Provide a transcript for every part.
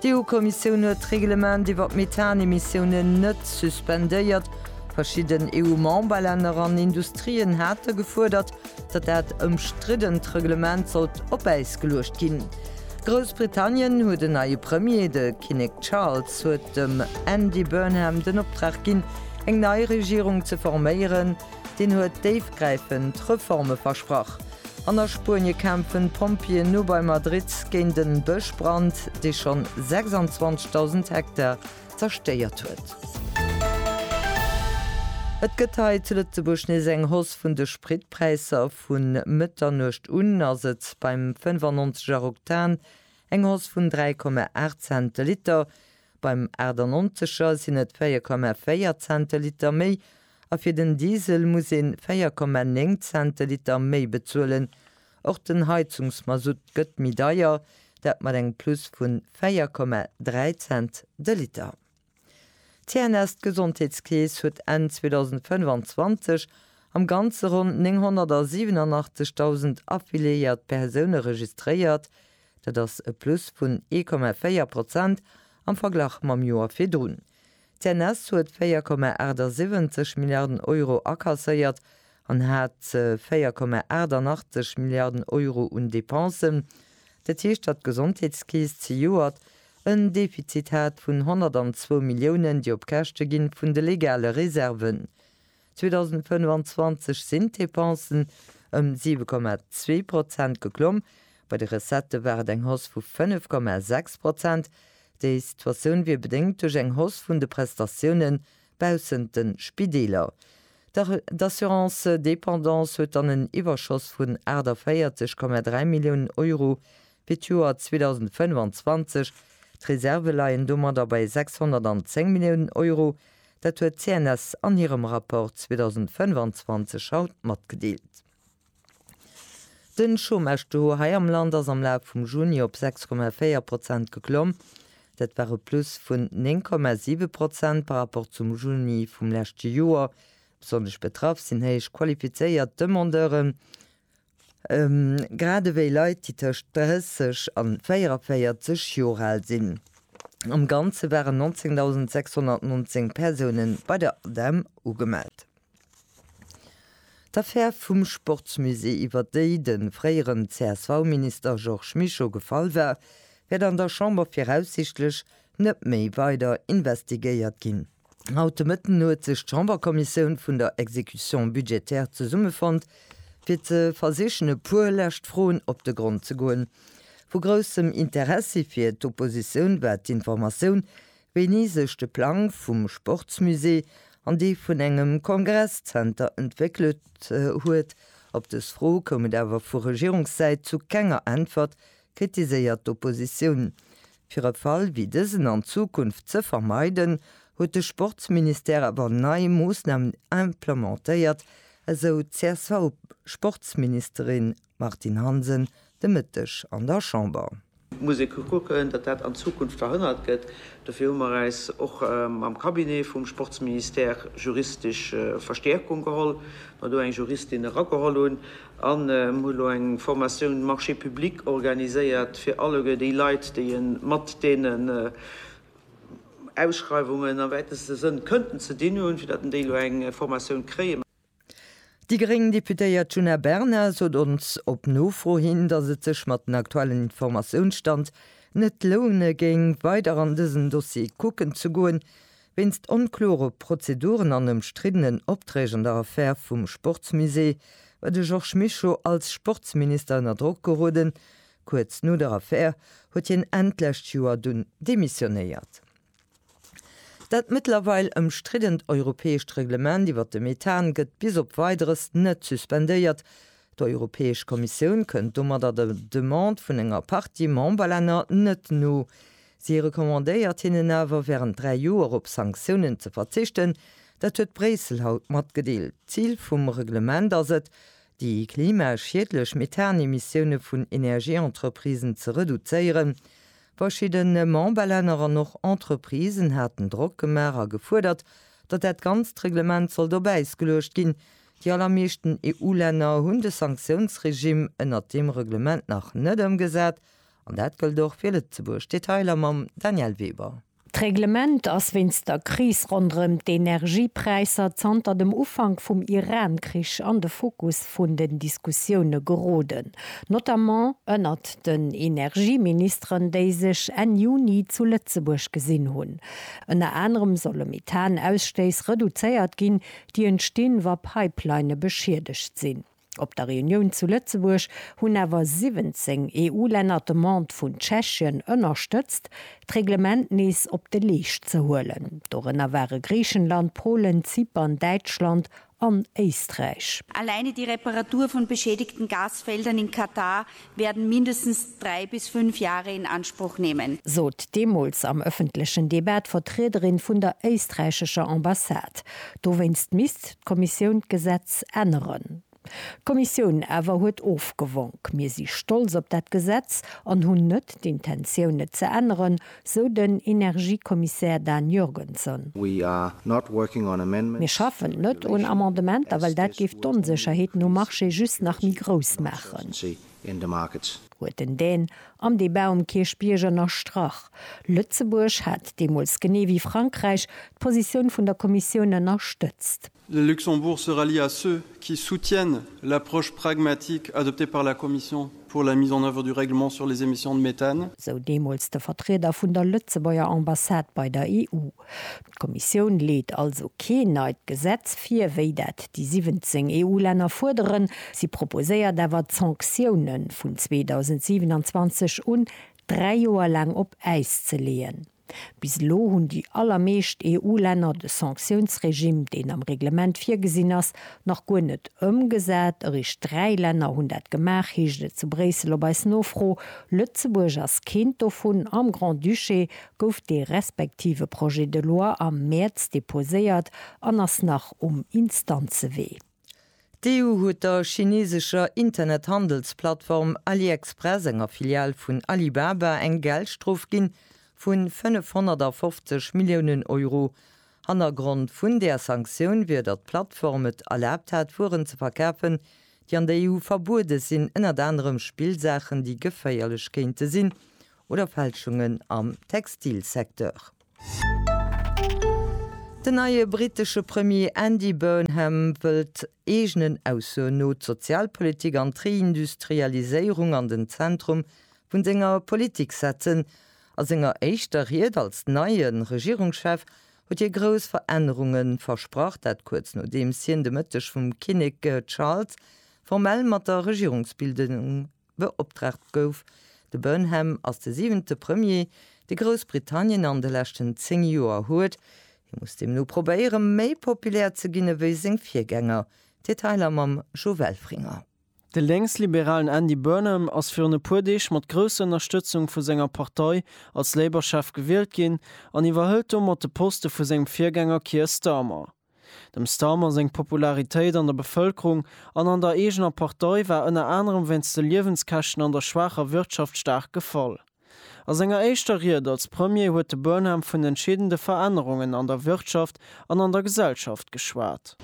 D'EU-Kommissioun huet d'Reglement iwwer d'Methanemissiounen net suspendéiert. Verschidden EU-Memberlänner an Industrien hate gefuerdert, datt dat ëmstriddent Reglement sollt op Äis geluecht ginn. Groussbritannien huet en neie Premier, de Kinnek Charles huet dem Andy Burnham den Optrag ginn, eng nei Regierung ze forméieren. Deen huet déifgräifend Reforme versprach. An a Spuenie kämpfen d'Pompjeeën no bei Madrid géint e Bëschbrand, dee schonn 26.000 Hektar zerstéiert huet. Et gëtt hei zu Lëtzebuerg nees eng Hausse vun de Spritpräisser. Vu Mëtternuecht un ass et beim 95 er Oktan eng Hausse vun 3,8 Cent de Liter, beim 98 er sinn et 4,4 Cent de Liter méi A fir den Diesel muss een 4,9 Cent de Liter méi bezuelen. Och den Heizungsmasutt gëtt méi deier, dat mat engem Plus vu 4,3 Cent de Liter. D'CNS, d'Gesondheetskeess, huet Enn 2025 am Ganze ronn 987.000 affiliéiert Persoune registréiert, dat ass e Plus vun 1,4 Prozent am Verglach mam Joer virdrun. D'CNS huet 4,78 Milliarden Euro akasséiert an hat 4,88 Milliarden Euro un Depensen. Dat heescht, datt d'Gesondheetskeess zejoert en Defizit hat vun 102 Milliounen, déi op Käschte gi vun de legale Reserven. 2025 sinn d'Depensen ëm 7,2 Prozent geklomm, bei de Recettë war et eng Hausse vu 5,6 Prozent. Déi Situatioun wier bedéngt duerch eng Hausse vun de Prestatioune baussent de Spideeler. D'Assurance dépendance huet dann en Iwwerschoss vun 48,3 Milliounen Euro fir d'Joer 2025. D'Reserve leien domadder bei 610 Milliounen Euro, Dat huet d'CNS an hirem Rapport 2025 haut matgedeelt. Den Chômage-Taux hei am Land ass am Laf vum Juni op 6,4 Prozent geklomm. Dat war e Plus vun 9,7 Prozent par rapport zum Juni vum leschte Joer. Besonnesch betraff sinn héich qualifizéiert Demandeuren. grad ewéi Leit, déi tëscht 30 a 44 Joer al sinn. Am Ganze waren 19.619 Persoune bei der ADEM ugemellt. D'Affär vum Sportsmusée, iwwer déi de fréieren CSV-Minister Georges Mischo gefall war, wäert an der Chamber viraussichtlech net méi weider investigéiert ginn. Haut de Mëtten huet sech d'Chamberkommissioun vun der Exécution budgétaire zesummefonnt, fir ze versichen e puer lescht Froen op de Grond ze goen. Vu groussem Interessi fir d'Oppositioun war d'Informatioun, wéini sech de Plang vum Sportsmusée an dee vun engem Kongresszenter entwéckelt huet. Op dës Fro koum et awer vu Regierungssäit zu kenger Äntwert, kritiséiert d'Oppositioun. Fir e Fall wéi dësen an Zukunft ze vermeiden, huet de Sportsministère awer nei Moossnamen implementéiert, esou d'CSV-Sportsministerin Martine Hansen de Mëtteg an der Chamber. Et muss ee kucken, datt dat an Zukunft verhënnert gëtt. Dofir hu mer äis och am Cabinet vum Sportsministère juristesch Verstäerkung geholl, well mer do eng Juristin erageholl hunn. An em hu lo eng Formatioun Marché public organiséiert fir alleguer déi Leit, déi en mat deenen Ausschreiwungen am wäiteste Sënn kënnten ze dinn hunn, fir datt en déi lo eng Formatioun kréien. Déi gréng Deputéiert Djuna Bernard sot ons op Nofro hin, datt et sech mat den aktuellen Informatiounsstand net loune géing, weider an dësen Dossier kucken ze goen, Wéinst onklore Prozeduren an ëmstriddenen Opträg an der Affär vum Sportsmusée war de Georges Mischo als Sportsminister ënner Drock geroden. Kuerz no der Affär huet hien Enn d'lescht Joer dunn demissionéiert. Dat mëttlerweil ëmstriddent europäescht Reglement iwwer de Methan gëtt bis op Weideres net suspendéiert. D'Europäesch Kommissioun kënnt domadder der Demande vun enger Partie Memberlänner net no. Si recommandéiert hinnen awer, wärend dräi Joer op Sanktiounen ze verzichten. Dat huet Bréissel haut matgedeelt. D'Zil vum Reglement ass et, déi klimaschiedlech Methan-Emissioune vun Energieentreprisen ze reduzéieren. Verschidde Memberlänner an och Entreprisen haten Drock gemaach a gefuerdert, datt dat ganzt Reglement sollt op Äis geluecht ginn. Déi allermeeschten EU-Länner hunn de Sanktiounsregimm ënnert deem Reglement nach net ëmgesat An dat gëllt och fir Lëtzebuerg. Detailer mam Danièle Weber. D'Reglement ass wéinst der Kris ronderëm d'Energiepräisser zanter dem Ufank vum Iran-Krich an de Fokus vun den Diskussioune geroden, notamment ënnert den Energieministeren, déi sech Enn Juni zu Lëtzebuerg gesinn hunn. Ënner anerem solle Methan-Ausstéiss reduzéiert ginn, déi entstinn, wa Pipelinne beschiedegt sinn. Op der Reunioun zu Lëtzebuerg hunn awer 17 EU-Länner d'Demande vun Tschechien ënnerstëtzt, d'Reglement nees op de Leescht ze huelen. Dorënner ware Griichenland, Polen, Zypern, Däitschland an Éisträich. Alleine die Reparatur von beschädigten Gasfeldern in Katar werden mindestens drei bis fünf Jahre in Anspruch nehmen. Sot deemools am ëffentlechen Debat d'Vertriederin vun der éisträichescher Ambassade. Dowéinst misst d'Kommissioun d'Gesetz änneren. D'Kommissioun awer huet ofgewonk, Mir si stolz op dat Gesetz an hunn net d'Intentioun, et ze änneren. Sou den Energiekommissär Dan Jorgenson. Mir schaffen net un Amendementer, well dat géif d'Onsécherheeten um Marché just nach méi grouss maachen, huet den Dan am Debat um Kierchbierg ënnerstrach. Lëtzebuerg hat deemools, genee wéi Frankräich, d'Positioun vun der Kommissioun ënnerstëtzt. Le Luxembourg se rallie à ceux qui soutiennent l'approche pragmatique adoptée par la Commission pour la mise en œuvre du règlement sur les émissions de méthane. Sou deemools de Vertrieder vun der Lëtzebuerger Ambassade bei der EU. D'Kommissioun leet also keen neit Gesetz vir, wéi dat déi 17 EU-Länner fuerderen. Si proposéiert awer, d'Sanktiounen vun 2027 un dräi Joer laang op Äis ze leeën. Bis elo hunn déi allermeescht EU-Länner de Sanktiounsregime, deen am Reglement virgesinn ass, nach guer net ëmgesat. Eréischt dräi Länner hunn dat gemaach, heescht et zu Bréissel op eis Nofro. Lëtzebuerg ass keent dovun. Am Grand-Duché gouf dee respektive Projet de loi am Mäerz deposéiert an ass nach um Instanzewee. D'EU huet der chineesescher Internethandelsplattform AliExpress, enger Filial vun Alibaba, eng Geldstrof ginn vun 550 Milliounen Euro. Hannergrond vun där Sanktioun wier, datt d'Plattform et erlaabt hat, Wueren ze verkafen, déi an der EU verbuede sinn, ënnert anerem Spillsaachen, déi geféierlech kéinte sinn, oder Fälschungen am Textilsecteur. Den neie brittesche Premier Andy Burnham wëllt eegenen Aussoen no d'Sozialpolitik an d'Reindustrialiséierung an den Zentrum vu senger Politik setzen. A senger éischter Ried als neie Regierungschef huet hie grouss Verännerunge versprach, dat kuerz nodeems hien de Mëtteg vum Kinnek Charles formell mat der Regierungsbildung beoptraagt gouf. De Burnham ass de siwente Premier, dee Groussbritannien an de leschten zéng Joer huet. Hie muss deemno probéiere méi populär ze ginn ewéi seng Virgänger. Detailer mam Jo Welfringer. De Lénksliberalen Andy Burnham ass virun e puer Deeg mat grousser Ënnerstëtzung vu senger Partei als Labour-Chef gewielt ginn an iwwerhëlt domat de Poste vu sengem Virgänger Keir Starmer. Dem Starmer seng Popularitéit an der Bevëlkerung an an der eegener Partei war ënner anerem wéinst de Liewenskäschten an der schwaacher Wirtschaft staark gefall. A senger éischter Ried als Premier huet de Burnham vun entscheedende Verännerungen an der Wirtschaft an an der Gesellschaft geschwat.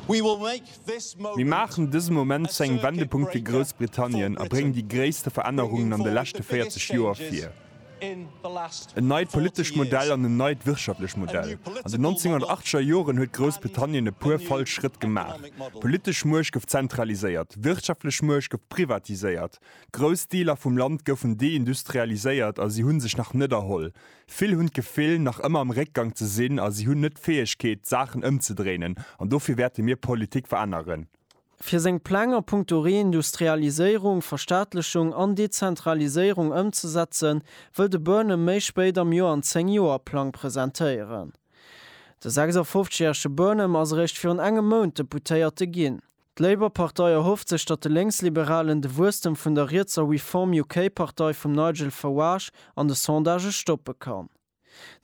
Mir maachen dëse Moment zu engem Wendepunkt fir Groussbritannien a bréngen déi gréisste Verännerungen an de leschte 40 Joer vir. En neit politescht Modell an en neit wirtschaftlech Modell. An den 1980er Joren huet Groussbritannien e puer falsch Schrëtt gemaach. D'politesch Muecht gouf zentraliséiert, d'wirtschaftlech Muecht gouf privatiséiert, grouss Deeler vum Land goufen deindustrialiséiert a si hu sech nach net erholl. Vill hunn d'Gefill, nach ëmmer am Réckgang ze sinn a si hunn net d'Fäegkeet, d'Saachen ëmzedréinen. An dofir wäerte mir Politik veränneren. Fir seng Pläng a Punkto Reindustrialiséierung, Verstaatlechung an Dezentraliséierung ëmzesetzen, wëll de Burnham méi spéit am Joer en Zéng-Joer-Plang presentéieren. De 56 järege Burnham ass eréischt virun engem Mount Deputéierte ginn. D'Labour-Partei erhofft sech, datt de Lénksliberalen de Wuesstem vun der rietser Reform UK-Partei vum Nigel Farage an de Sondagë stoppe kann.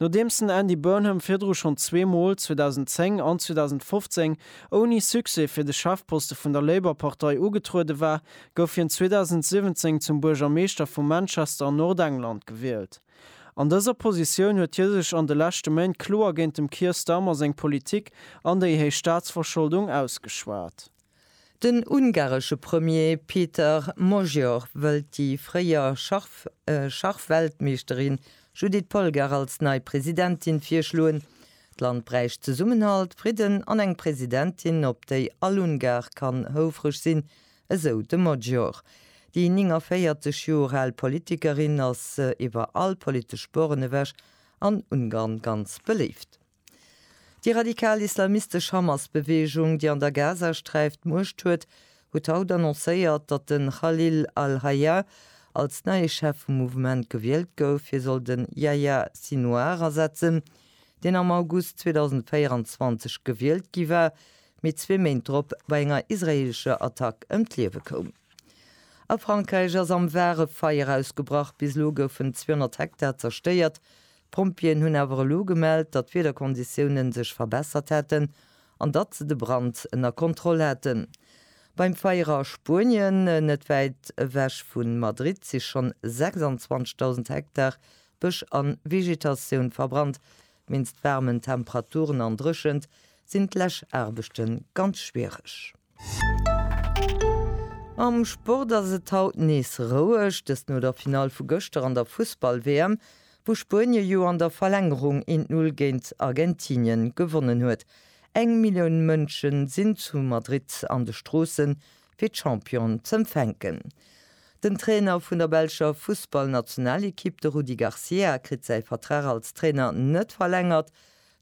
Nodeems den Andy Burnham virdru schonn zwee Mol, 2010 an 2015, ouni Succès fir de Chefposte vun der Labour-Partei ugetruede war, gouf hien 2017 zum Buergermeeschter vu Manchester an Nordengland gewielt. An dëser Positioun huet hie sech an de leschte Méint kloer géint dem Keir Starmer seng Politik an déi héich Staatsverscholdung ausgeschwat. Den ungaresche Premier Péter Magyar wëllt déi fréier Schachweltmeeschterin Judit Polgár als nei Presidentin virschloen. D'Land bräicht Zesummenhalt, Fridden an eng Presidentin, op déi all Ungar kann houfreg sinn, esou de Magyar. Déi 49 Joer al Politikerin ass iwwer all politesch Sporen ewech an Ungarn ganz beléift. Déi radikal islamistesch Hamas-Beweegung, déi an der Gazasträif d'Muecht huet, huet haut annoncéiert, datt de Khalil al-Hayya als neie Chef vum Mouvement gewielt gouf. Hie soll de Yahya Sinouar ersetzen, deen am August 2024 gewielt gi war, mee zwee Méint drop bei enger israeelescher Attack ëm d'Liewe koum. A Frankräich ass am Var e Feier ausgebrach. Bis elo goufen 200 Hektar zerstéiert, D'Pompjeeën hunn awer elo gemellt, datt d'Wiederkonditiounen sech verbessert hätten an datt se de Brand ënner Kontroll haten. Beim Feier a Spuenien, net wäit ewech vu Madrid, si schonn 26.000 Hektar Bësch a Vegetatioun verbrannt. Wéinst waarmen Temperaturen an Dréchent sinn d'Läschaarbechte ganz schwiereg. Am Sport ass et haut nees roueg, dëst no der Finall vu gëschter an der Fussball-WM, wou Spuenie jo an der Verlängerung een d'Null géint Argentinien gewonnen huet. Eng Millioun Mënschen sinn zu Madrid an de Stroossen, fir d'Championen z'empfänken. Den Trainer vun der belscher Fussball-Nationalekipp, de Rudi Garcia, kritt säi Vertrag als Trainer net verlängert.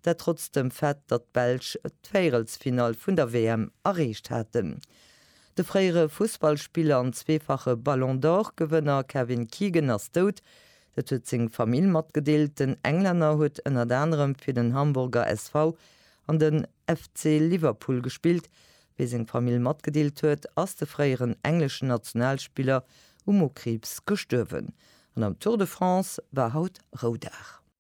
Dat trotz dem Fait, datt d'Belsch d'Véierelsfinall vun der WM erreecht haten. De fréiere Fussballspiller an zweefache Ballon d'Or-Gewënner Kevin Keegan ass dout. Dat huet seng Famill matgedeelt. Den Englänner huet ënnert anerem fir den Hamburger SV an den FC Liverpool gespillt. Wéi seng Famill matgedeelt huet, ass de fréieren engleschen Nationalspiller u Mokriibs gestuerwen. An am Tour de France war haut Roudag.